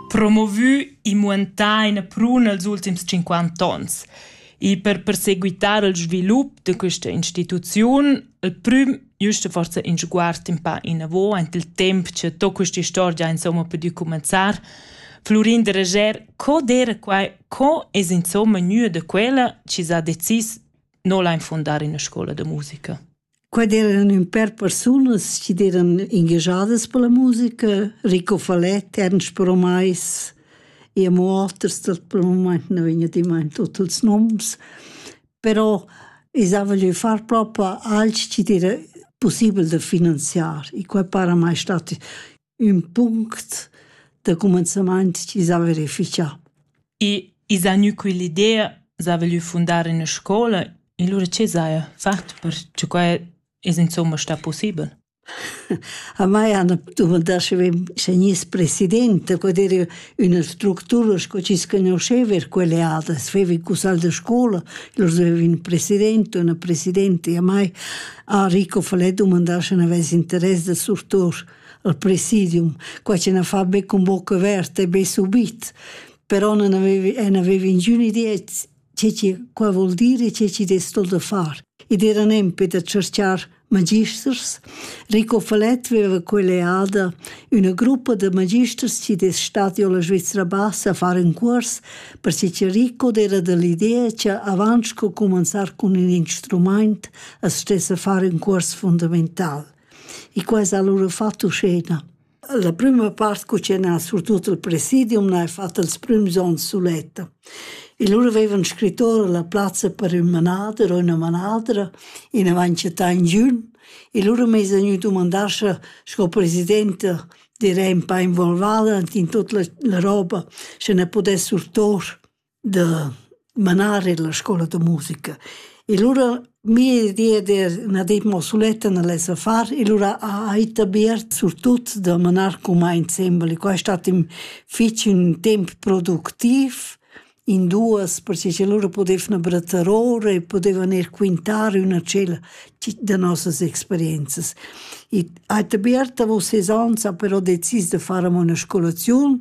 Promovü e muantà ina pruna els ultims cinquanta ons. E per perseguitar il svilup da questa instituziun, il prüm giusta forsa in sguard in pa inavo aint il temp cha to questa istorgia insomma pudü cumanzar, Florin de Reger, co d'eira quai, co es insomma gnü da quella chi s'ha decis no la infondar in una scoula da musica? Qua d'eran ün pêr persunas chi d'eran ingagiadas per la musica, Rico Faletti, Ernst Bromais e amo oters dal pel mumaint nu vegna dimaint tuot ils noms, però i s'haja lö far propa alch chi d'era pussibel da finanziar, i qua para mai stat ün punct da cumenzamaint chi s'ha verifichà. E i s'ha gnü quell'idea s'ha voglü fundar üna scoula e lura che s'haja fat per che quai es insomma stà pussibel? A mai hanno dumandà sche sche gness presidente, quod era üna structura sco chi sconosceva er quelle adas, veva i cusal da scola, lur aveva ün presidente, una presidente e a mai a Rico Falè dumandà sche n'avess interess da surtour. al presidium, quai che na fa be cun boca averta be subit, però non avevi, non avevi ingün idea che chi qua vuol dir e che chi des sto da far. Ed era nempe da cerchar magisters. Rico Falet veva quell'eada una gruppa de magisters ci des stati alla Svizzera Bassa a fare un curs perché che Rico era dell'idea che avanz co comenzar con un instrument as stesse fare un curs fondamentale. E qua ha lura fatto scena. La prima part cucenà surtut il presidium n'ha fatto ils prüms ons suletta. E lura aveva un scrittore la plazza per ün manader o üna manadra in avancietà in giun e lura m'es vegnu dumandar scha sco presidente direi un pa involvada in tut la, la roba, sche ne pudess surtor da manar illa scoula da musica e lura mia idea d'er üna di mo suletta n'al esa far e lura ha ita Beat surtut da manar cumà insembel e qua è stat ün fich ün temp productiv in duos perche cha lura pudevna brattar ora e pudevan eir quintar üna tschella da nossas experienzas. Ita Beat davò ses ans ha però decis da far amo üna scolaziun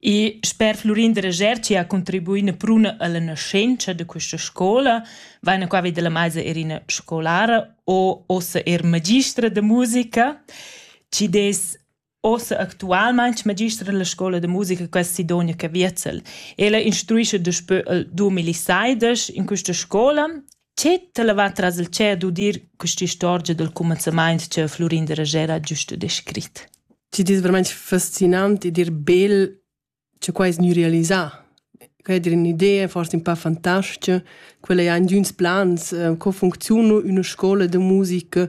E sper Flurin Dreger chi ha contribuì üna pruna illa naschentscha da quista scoula, vaina qua vi da la maisa eir üna scolara o uossa eir magistra da musica chi'd es uossa actualmaing magistra illa scoula da musica quest Sidonia Caviezel. Ella instruescha daspö il dumilaseidesch in quista scoula Che t'ha levà tras il tschep d'udir quest'istorgia dal cumenzamaint cha Flurin da Rajèra ha giusto descrit? Ti dis vermaint fascinant e dir bel cha quai es gnü realisà. Quai è dir ün'idea forse ün pa fantastica. Quella è aint d'üns plans, co funcziuna üna scoula da musica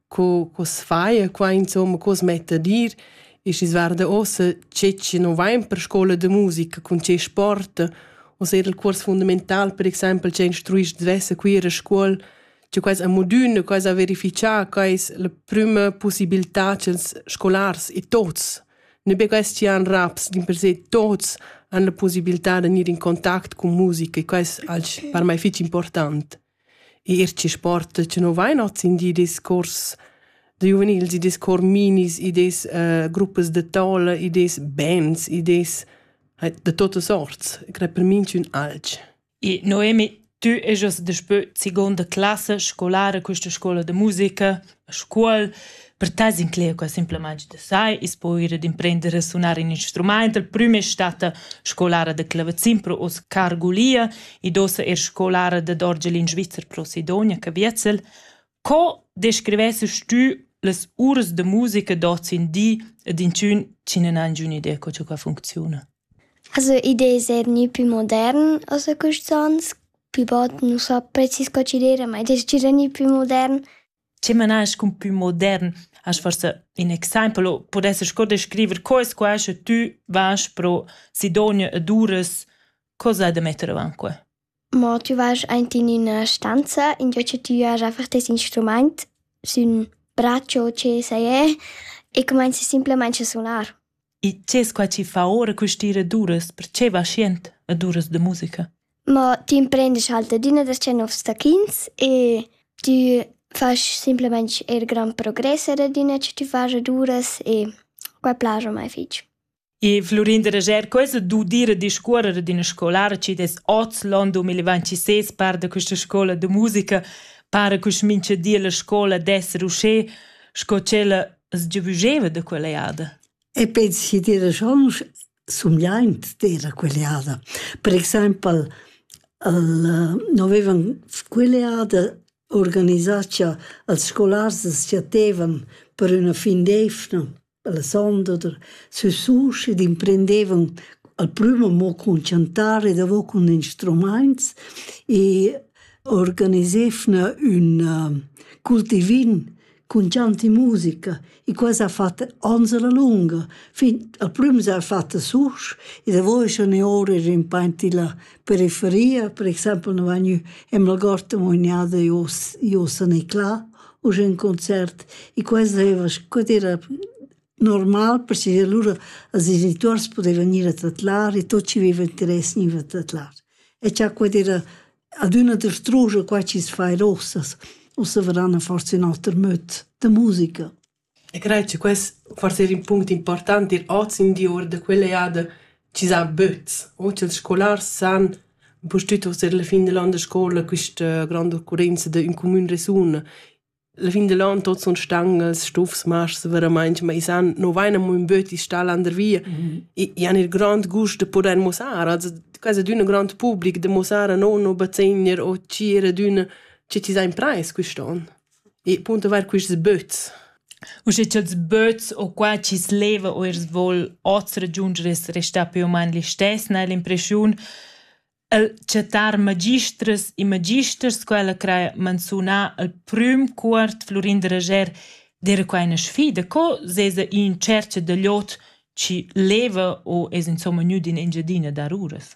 co, co se fa e qua insomma cosa mette a dir e si guarda ossa che ci non va in per scuola de musica con che sport o se il curs fundamental per exempel che instruisci dvesse qui a scuola che quais a modune, quais a verificar, quais la prima possibilità che scolars e tots ne be quais ci han raps din per se tots han la possibilità de venire in contact con musica e quais al per me fece important. Eir chi sporta chi nu vain hoz in di discuors da giuvenils, i dess cor minis, i dess gruppas da tola, i dess bands, i dess da tuotta sorts. I cret per minchün alch. I Noemi, tü ejast daspö segonda classa scolara quista scoula da musica. A scuol per te s'inclegia quai simplamaing da sai. I's po ir ad imprender a sunar ün instrumaint. La prüma es statta scolara da clavazin pro hoz Cargulia. Id ossa eir scolara dad orgel in Svizzer pro Sidonia, Caviezel. Co descrivessast tü las uras da musica d'hoz in di ed inchün chi nun ha ingiün'idea co cha quai funcziuna? Also id es eir gnü pü modern als a quists ans, pü bod nu sa prezis co ch'igl era, ma id es gira gnü pü modern. Schi manast cun pü modern hast forsa ün exaimpel o pudesses sco descriver co es quai sche tü vas pro Sidonia ed uras, co s'ha da metter avant que? Mo tü vasch aint in üna stanza, ingio cha tü has einfach tes instrumaint sün bratscha o che sai es e cumainzi simplamaing a sunar. E dschess qua chi fa ora quist'ira ad uras, perche vas jent ad uras da musica? Mo tü imprendisch halt adüna da tschè nouvs taclins e tü fasch simplamaing eir grand progress er adüna cha tü fast ad uras e quai plascha a mai fich. E Flurin da Rager, quesa d'udir e discuorrer d'üna scolara chi dess oz l'on 2026 par da quista scoula da musica, para culs mincha di la scoula d'esser uschè sco tschella sgiavüscheva da quella jada. E pens chi d'eira schon sumgliaint d'eira quella jada. Per exaimpel el no vevan quella jada organisà cha als scolars as chatevan per üna fin d'eivna Alessandro der sesuschi d'imprendevon al prüma mo cun chantar e davo cun instrumaints e organisevna ün cultivin cun chant e musica e questa ha fat ans a la lunga fin al prüm s'ha fat a Susch e davo eschan i oura rimpaint illa periferia, per exaimpel no vegn ü Emmelgarten, mo i n'ha da i hoz i hoz a Neclà u sch'ün concert e quai zeva sco era normal perche lura als genituors pudeva gnir a tadlar e tot chi veva interess gniva a tadlar. E cha quai era adüna derstrugia quai chi's fa eir uossa. Uossa varan forsa ün oter möd da musica. E crei che quest forsa era in punct important dir oz in di ora da quella eada ch'i sa böts o cha'ls scolars san pustüt uster la fin dell an da scoula quista gronda occurrenza da ün cumün resun. La fin dell an tuot sun stangas, stufs, masks veramaing, ma i san no vain amo ün böt i'l stal landervia. I i han il grond gust da pudair muossar, also quasi d'üna grond public da muossar a no no bazegner o tgir ad üna che chi s'ha imprais quist'on. E punto var quists böts. Usche cha'ls böts o qua chi's leva o eir voul hoz ragiunder es restà più o main listess, n'hai l'impreschiun el chattar magistras e magisters, quella craja manzunà al prüm cuort Flurin da Rajer d'eira quai üna sfida. Co s'esa in tschercha da l'ot chi leva o es insomma gnüd in Engiadina dar uras?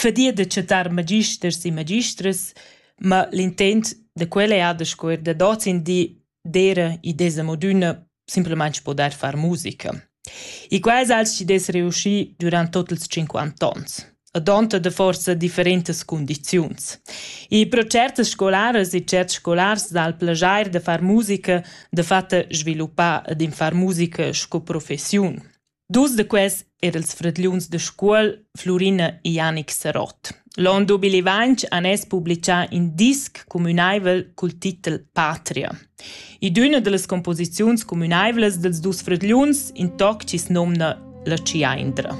fadia da chattar magisters e magistras, ma l'intent da quella eir da scuer dad hoz in di d'eira id es amo d'üna simplamaing pudair far musica. E quai es als chi dess reuschi durant tuot ils tschinquant ons, adonta da forsa differentas cundiziuns. E pro tschertas scolaras e tscherts scolars dal plaschair da far musica dafatta sviluppà ad in far musica sco professiun. Dus da quels er els fradgliuns da Scuol, Flurina e Janic Sarott. L'on 2020 han es publichà in disc cumünaivel cul titel Patria. I d'üna da las composiziuns cumünaivlas dels dus fradgliuns, in toc chi's nomna La Ciaindra.